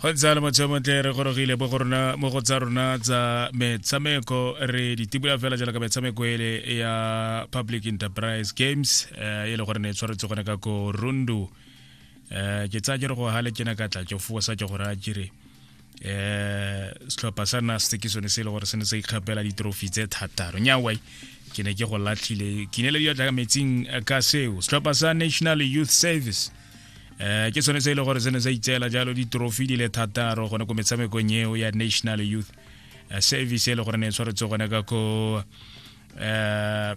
go ntse le motho montle re gorogile mo go rona mo go tsa rona tsa metshameko re ditibula fela jaaka metshameko ele ya public enterprise games eh, e le gore ne e tshwaretse gone ka ko rundu um ke tsaya ke re go gale ke na ka tlatso fosa ke gore a kere eh setlhopha sa naste ke sone se e le gore se ne sa ikgapela ditrofi tse thataro nyawai ke ne ke go latlhile ke ne le diatla ka metsing eh, ka seo setlhopha sa national youth service eh ke sone se e le gore se ne sa itseela jalo ditrofi di le thataro gone ko metshamekong eo ya national youth eh, service e le gore ne e tshwaretse gone ka ko eh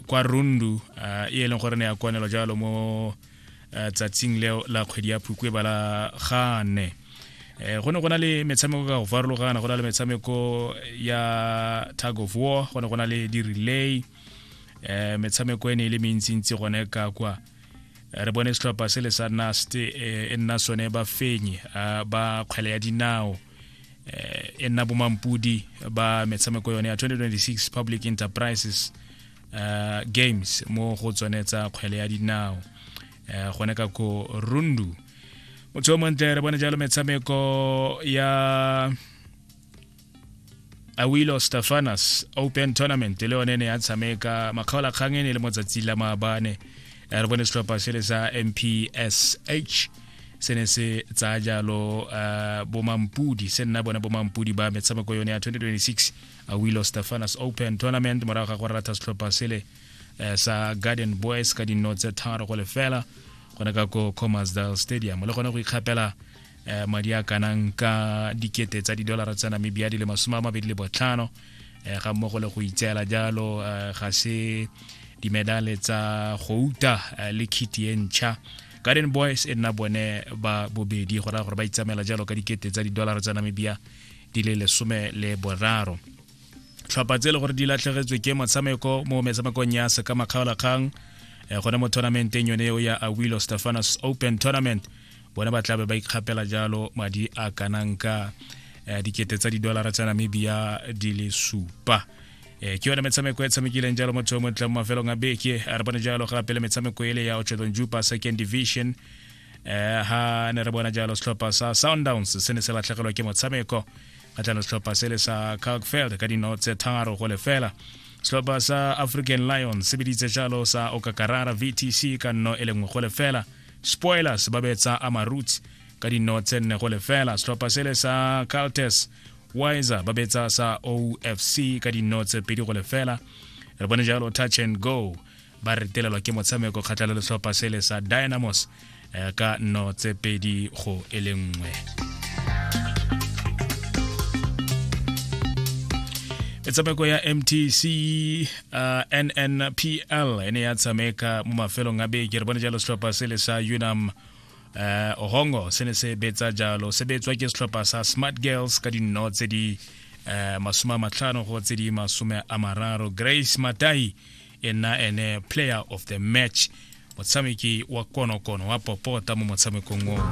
kwa rundu e leng gore ne ya kwanelo jalo mo eh, tsatsing leo la kgwedi ya phukwe ba la gane eh, go ne go na le metshameko ka go farologana go na le metshameko ya tag of war go ne go na le di-relay um metshameko e ne e le mentsintsi gone ka kwa re bone setlhopha se le sa nast e nna sone ba fenye ba kgwele ya dinao e nna bomampudi ba metshameko yone ya 2026 public enterprises uh, games mo go tsone tsa kgwele ya dinao uh, gone ka ko rundu motho o montle re bone jalo metshameko ya awilo stefanas open tournament le yone ne ya tshameka makgaolakgang e ne le motsatsi la maabane re bone setlhopha se le sa mpsh se ne se tsaya jalo uh, bomampudi se nna bone bomampudi ba metshameko yone ya 2026 Awilo Stefanus Open Tournament morago ga go rata setlhopha sele eh, sa Garden Boys ka dinno tse tharo go lefela gone ka ko Comasdale Stadium le gone go ikgapela eh, madi a kanang ka dikete tsa didolara tsa Namibia di le masome a mabedi le botlhano eh, ga mmogo le go itseela jalo ga se dimedale tsa go uta le khiti e ntšha garden boys e nna bone ba bobedi go raya gore ba itsamela jalo ka dikete tsa didolara tsa namibia di le lesome le boraro tlhopha tse e le gore di latlhegetswe ke motshameko mo metshamekong ya sekamakgaolakgang eh, gone mo tournamenteng yone eo ya awilo stefanus open tournament bone ba tlabe ba ikgapela jalo madi a kanang ka eh, dikete tsa didolara tsa namibia di le supa eh, ke yone metshameko e tshamekileng jalo motho o montle mo mafelong a beke a re bone jalo gape le metshameko ele ya ocheton jupa second division eh ha ne re bona jalo setlhopha sa Sundowns se ne se latlhegelwa ke motshameko kgatlhano setlhopha se le sa Kalkfeld ka dino tse tharo go lefela setlhopha sa African Lions se biditse jalo sa Okakarara VTC ka nno e lengwe go lefela Spoilers ba betsa Amaroots ka dino tse nne go lefela setlhopha se le sa Caltes Wiser ba betsa sa OFC ka dino tse pedi go lefela re bone jalo touch and go ba retelelwa ke motshameko kgatlhela letlhopha sele sa dynamos eh, ka nno tse pedi go e le nngwe metshameko ya mtc uh, nnpl e ne ya tshameka mo mafelong a beke re bone jalo setlhopha sele sa unam uh, ohongo se ne se betsa jalo se betswa ke setlhopha sa smart girls ka dinno tse di uh, masome a matlhano go tse di masome a mararo grace matai e nna ene player of the match motshameki wa konokono wa popota mo motshamekong oo